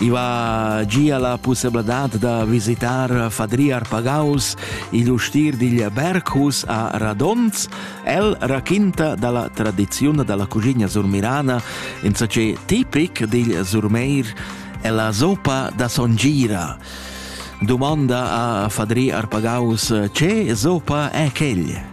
I va gia la pussebladad da visitar Fadriar Pagaus, igl ustir digl Berghus a Radons. El raquinta dalla tradiziun dalla cugina surmirana in ce tipic digl surmeir e la sopa da songira. Domanda a Fadri Arpagaus, ce sopa è quegl?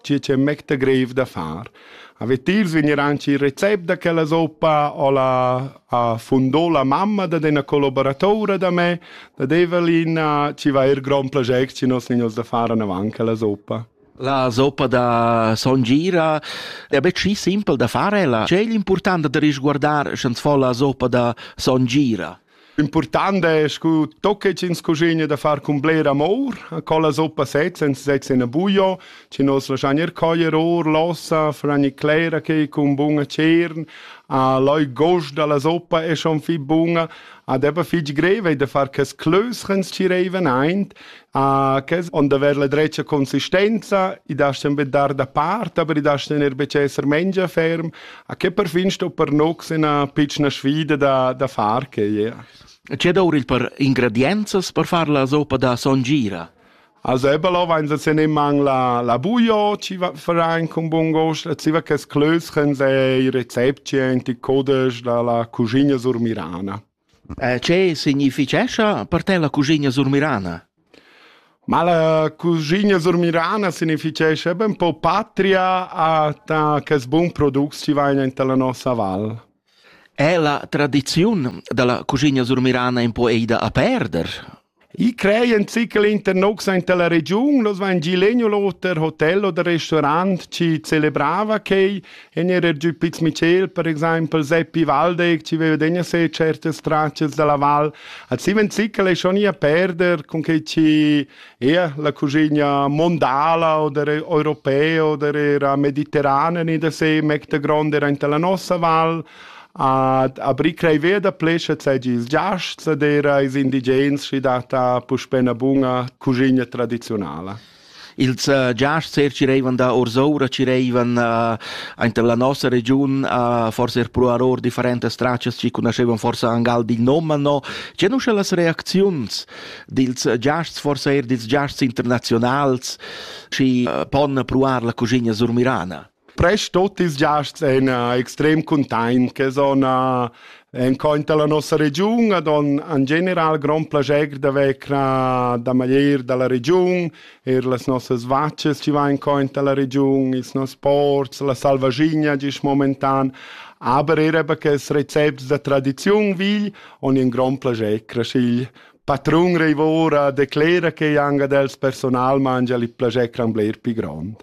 tgi che mecta greiv da far. A vetils vegnir anche il recept da quella zoppa o la a fundò la mamma da una collaboratora da me, da Evelina, ci va er gran piacere ci nostri da fare avanti la zoppa. La zoppa da Son Gira è bel schi simpel da fare, la c'è l'importante da risguardare sch'ans fa la zoppa da Son Gira. Important è scu tocca ch'ins cuschigna da far cun bler amor, co la soppa set senza sezza in buio, ci nos lascian ir coglier or l'ossa, fragni clera che cun buna cern, a loi gost dalla soppa è schon fi buna, ad ebba fitg greve da far cas clös ch'ins ci reiven aint, Uh, che on da aver la dretga consistenza, i dastan be dar da part, aber i dastan er be esser mengia ferm, a che perfin sto per nox ina piccina sfida da, da far che yeah. C'è da uri per ingredienzas per far la sopa da songira? Also eben lo, wenn sie nicht mang la, la Bujo, ci verein con buon gosto, ci va che sclöschen se i rezepti, die Codisch, la, la cucina sur Mirana. Che significhescha per te la cuschigna surmirana? Ma la cuschigna surmirana significhescha ben po patria a ta che bun product ci vaina inta la nossa val. È la tradiziun dalla cuschigna surmirana un po eida a perder? I creien zichel internox aint la regiun, los vain gi legno l'oter hotel oder restaurant chi celebrava quei, e n'era giù Piz Michel, per exempel Seppi Waldeck, ci veva degna se certe stracces dalla val. Al siven zichel è schon ia perder con che ci era la cuginia mondala oder europea oder era mediterranea, ni da se mecta grande era aint la nossa val, Ad aprir creiver da plescha seigi ils giasts ed era ils indigens schi data puspè una buna cuschina tradizionala. Ils uh, giasts er ci reivan da Orsoura, ci reivan uh, aint la nossa regiun, uh, forse er pro aror differentes straccias, ci conoscevan forse angal di noma, no. C'è nuscia las reacziuns dils giasts, forse er dils giasts internazionals, ci uh, pon proar la cuschina surmirana? Prest tut ils giasts ein eh, extrem cuntegn che son eh, encointer la nossa regiun ad on en general grand plascher d'haver cra da maglier dalla regiun, er las nossas vacces ci va encointer la regiun, ils nos ports, la salvagigna gis momentan, aber era perché recepts da tradiziun vigl on in grand plascher craschigl patrun reivora declera che anga dels personal mangia il plascher cran bler pi grand.